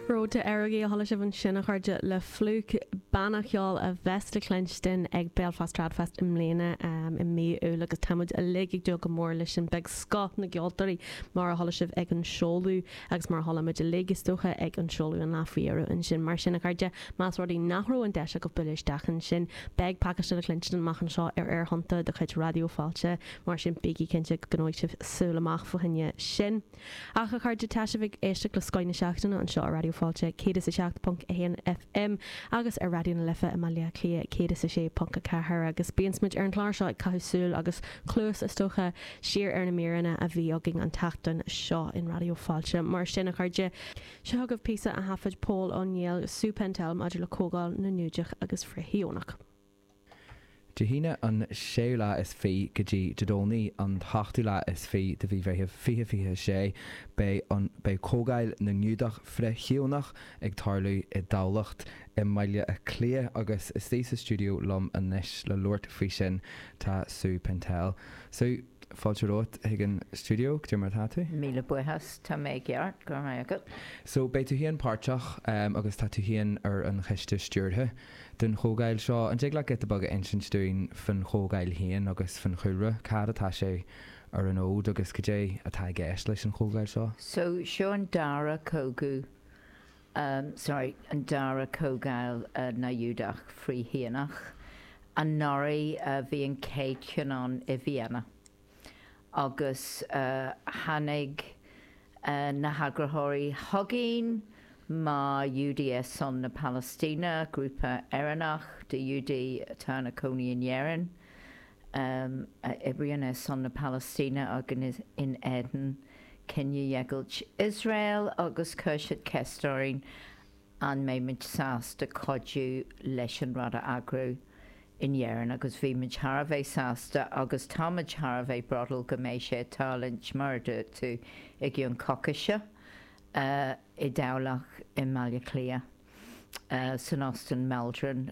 Road to Errogie a chuala sibh ansin, a chairde, le Flook, banna ceoil a bheas le cluinstin ag Belfast Tradfest i mbliana i mí Iúil agus tá muid uilig ag dúil go mór leis sin. Beidh scoth na gceoltóirí, mar a chuala sibh ag an seoladh agus mar a chuala muid uilig, is dócha, ag an seoladh an lá faoi dheireadh ansin. Mar sin, a chairde, más rud é nach raibh an deis agaibh bualadh isteach ansin, beidh pacáiste le cluinstin amach anseo ar aerthonnta de chuid Raidió Fáilte, mar sin bígí cinnte go gcoinneoidh sibh súil amach fá choinne sin. Ach, a chairde, tá sibh ag éisteacht le Scoth na Seachtaine anseo ar Raidió Fáilte 107.1 FM agus ar Raidió na Life i mBaile Átha Cliath 106.4 agus bíonn muid ar an gclár seo ag caitheamh súil, agus cluas is dócha, siar ar na míreanna a bhí againn an tseachtain seo in Raidió Fáilte. Mar sin, a chairde, seo chugaibh píosa a thaifead Pól Ó Néill, Sue Pentel maidir le Comhdháil na nGiúdach agus Frith-Shíónach. Dé hAoine an séú lá is fiche go dtí Dé Domhnaigh an t-ochtú lá is fiche de mhí Mheithimh fiche fiche a sé, beidh an beidh Comhdháil na nGiúdach Frith-Shíónach ag tarlú i dTamhlacht, i mBaile Átha Cliath agus istigh sa stiúideo liom anois le labhairt faoi sin tá Sue Pentel. Sue, fáilte romhat chuig an stiúideo, cad é mar atá tú? Míle buíochas, tá mé i gceart, go raibh maith agat. So, beidh tú féin páirteach, em, agus tá tú féin ar an choiste stiúrtha. den chomhdháil seo. An dtig leat giota beag a insint dúinn faoin chomhdháil féin agus faoin chúlra? Cá fhad atá sé ar an fhód agus cad é atá i gceist leis an chomhdháil seo? So, seo an dara cogadh, em, sorry, an dara comhdháil na nGiúdach Frith-Shíónach. Anuraidh bhí an chéad cheann ann i Vienna. agus tháinig na heagraitheoirí chugainn, mar Ghiúdaigh ar son na Palaistíne, grúpa Éireannach de Ghiúdaigh atá ina cónaí in Éirinn, a oibríonn ar son na Palaistíne agus in éadan cinedheighilt Iosrael, agus chuir siad ceist orainn an mbeidh muid sásta cuidiú leis an rud a eagrú in Éirinn agus bhí muid thar a bheith sásta agus tá muid thar a bheith bródúil go mbeidh sé ag tarlúint mar a dúirt tú i gcionn coicíse i dTamhlacht i mBaile Átha Cliath san Óstán Maldron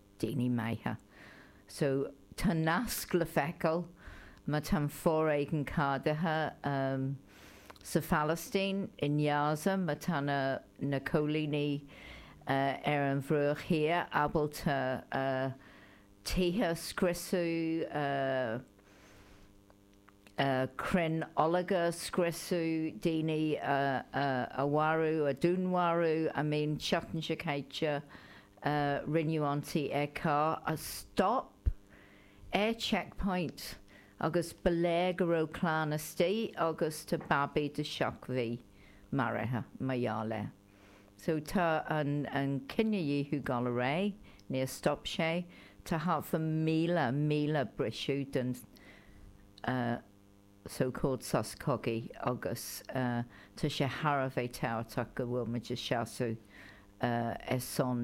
daoine maithe. So tá nasc le feiceáil, má tá an foréigean ceadaithe sa Phalaistín, i nGaza, má tá na coilínigh ar an Bhruach Thiar ábalta tithe a scriosadh, crainn ológ a scriosadh, daoine a mharú, a dúnmharú, I mean seachtain seo caite rinneadh ionsaí ar charr a stop ar checkpoint agus ba léir go raibh clann istigh agus tá babaí de sheacht mí maraithe mar gheall air. So tá an cinedhíothú ag dul ar aghaidh, níor stop sé, tá thart ar míle míle briseadh den so called sos cogaidh agus tá sé thar a bheith tábhachtach go bhfuil muid ag seasamh ar son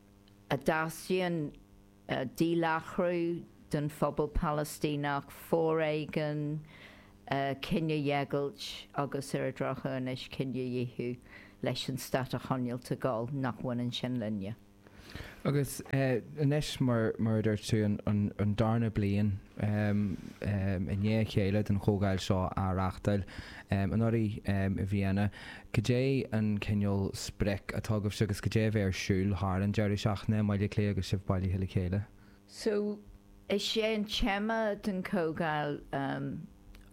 a dteastaíonn díláithriú den phobal Palaistíneach, foréigean, cinedheighilt agus, ar an drochuair anois, cinedhíothú, leis an stát a choinneáilt ag gabháil, nach mbaineann sin linne. Agus anois, mar a dúirt tú, an darna bliain i ndiaidh a chéile den chomhdháil seo á reáchtáil anuraidh i Vienna, Cad é an cineál sprioc atá agaibhse agus cad é a bheidh ar siúl thar an deireadh seachtaine i mBaile Átha Cliath agus sibh bailithe le chéile? So, is é an téama den chomhdháil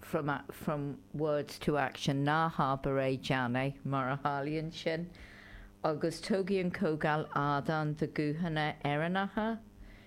from from words to action, ná habair é, déan é, mar a tharlaíonn sin. Agus tabharfaidh an chomhdháil ardán do ghuthanna Éireannacha,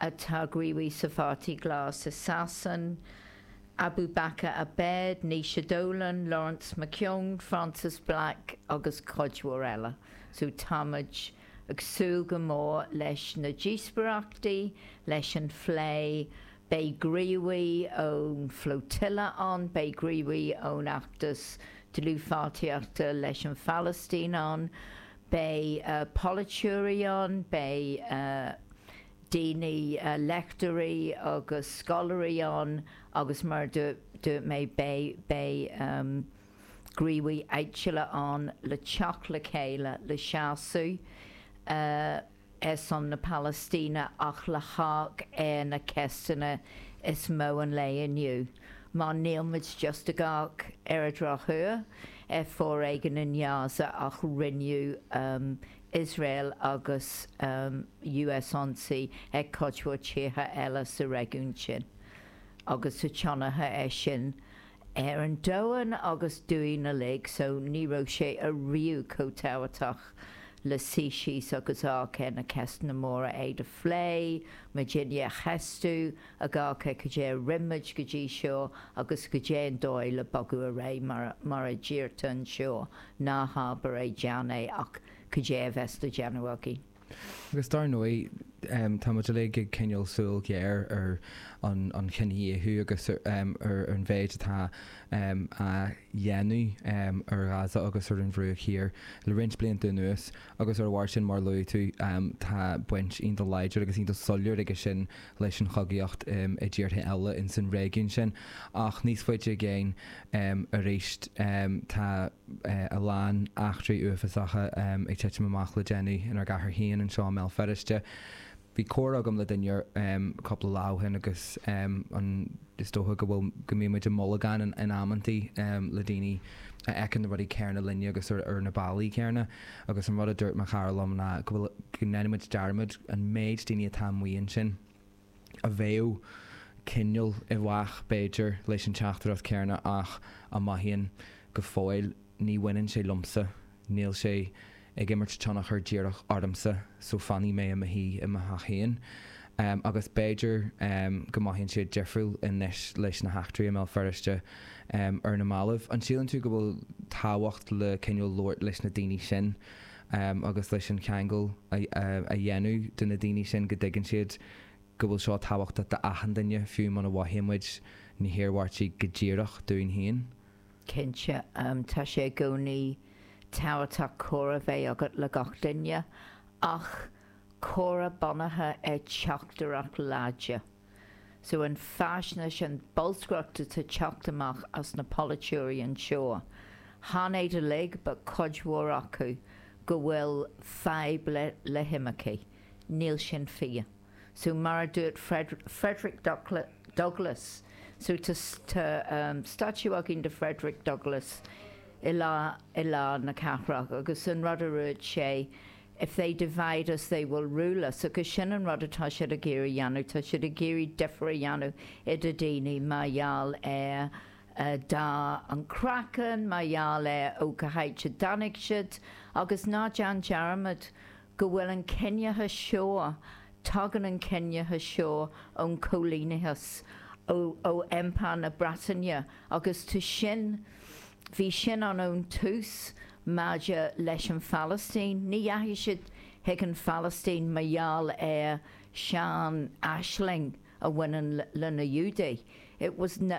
atá gníomhach sa Pháirtí Glas i Sasain, Abubaker Abed, Naoise Dolan, Laurence McKeown, Frances Black agus cuid mhór eile. So táimid ag súil go mór leis na díospoireachtaí, leis an phlé. Beidh gníomhaí ón Flotilla ann, beidh gníomhaí ón fheachtas dlúthpháirtíochta leis an Phalaistín ann, Beidh polaiteoirí ann, beidh daoine, léachtóirí agus scoláirí ann agus mar a dúirt mé beidh gníomhaithe áitiúla ann le teacht le chéile, le seasamh. ar son na Palaistíne ach le hamharc ar na ceisteanna is mó an lae inniu mar níl muid just ag amharc ar an drochuair ar fhoréigean in Gaza ach rinne Iosrael agus US ionsaí ar chuid mhór tíortha eile sa réigiún sin agus tá tionchar aige sin ar an domhan agus orainn uilig so ní raibh sé ariamh chomh tábhachtach le suí síos agus amharc ar na ceisteanna móra iad a phlé muid féin a cheistiú ag amharc ar cad é a rinne muid go dtí seo agus cad é an dóigh le bogadh ar aghaidh mar mar a deirtear anseo ná habair é déan é ach cad é a bheas le déanamh againn. Agus dar ndóigh, tá muid uilig ag coinneáil súil ghéar ar an chinedhíothú agus ar an mhéid atá á dhéanamh ar Ghaza agus ar an Bhruach Thiar le roinnt blianta anuas agus ar a bharr sin, mar a luaigh tú, tá baint iontach láidir agus iontach soiléir aige sin leis an chogaíocht i dtíortha eile ins an réigiún sin. Ach níos faide i gcéin arís, tá. a lán eachtraí uafásacha ag titim amach le déanaí inár gcathair féin anseo i mBéal Feirste. Bhí comhrá agam le duine cúpla lá ó shin agus is dócha go bhfuil, go mbíonn muid i mbolgán in amantaí le daoine a fheiceann na rudaí céanna linne agus ar na bealaí céanna. Agus an rud a dúirt mo chara liom ná go bhfuil, go ndéan muid dearmad an méid daoine atá amuigh ansin. a bheadh cineál i bhfách, b'fhéidir, leis an teachtaireacht chéanna ach a mhothaíonn go fóill, 'ní bhaineann sé liomsa, níl sé ag imirt tionchar díreach ormsa so fanfaidh mé i mo shuí i mo theach féin'. Agus b'fhéidir go mothaíonn siad difriúil anois leis na heachtraí i mBéal Feirste ar na mallaibh. An síleann tú go bhfuil tábhacht le cineál labhairt leis na daoine sin? agus leis an cheangal a dhéanamh do na daoine sin go dtuigeann siad go bhfuil seo tábhachtach d'achan duine, fiú muna mhothaíonn muid na hiarmhairtí go díreach dúinn féin. Cinnte, tá sé i gcónaí tábhachtach comhrá a bheith agat le gach duine, ach comhrá bunaithe ar teachtaireacht láidir. So an faisnéis, an bholscaireacht atá teacht amach as na polaiteoirí anseo, chan iad uilig, but cuid mhór acu, go bhfuil fadhb le, le himircigh. Níl sin fíor. So mar a dúirt Frederick Douglass, so tá, tá ehm statue againn de Frederick Douglass i lár, i lár na cathrach agus an rud a dúirt sé, If they divide us they will rule us, agus sin an rud atá siad ag iarraidh a dhéanamh, tá siad ag iarraidh difear a dhéanamh idir daoine mar gheall ar dath an chraiceann, mar gheall ar ó cá háit a dtáinig siad agus ná déan dearmad go bhfuil an ciníochas seo, tagann an ciníochas seo ón choilíneachas, ó Impire na Breataine agus tá sin. Bhí sin ann ón tús maidir leis an Phalaistín. Ní dheachaigh siad chuig an Phalaistín mar gheall ar sean-aisling a bhaineann le na Iúdaigh. It was na.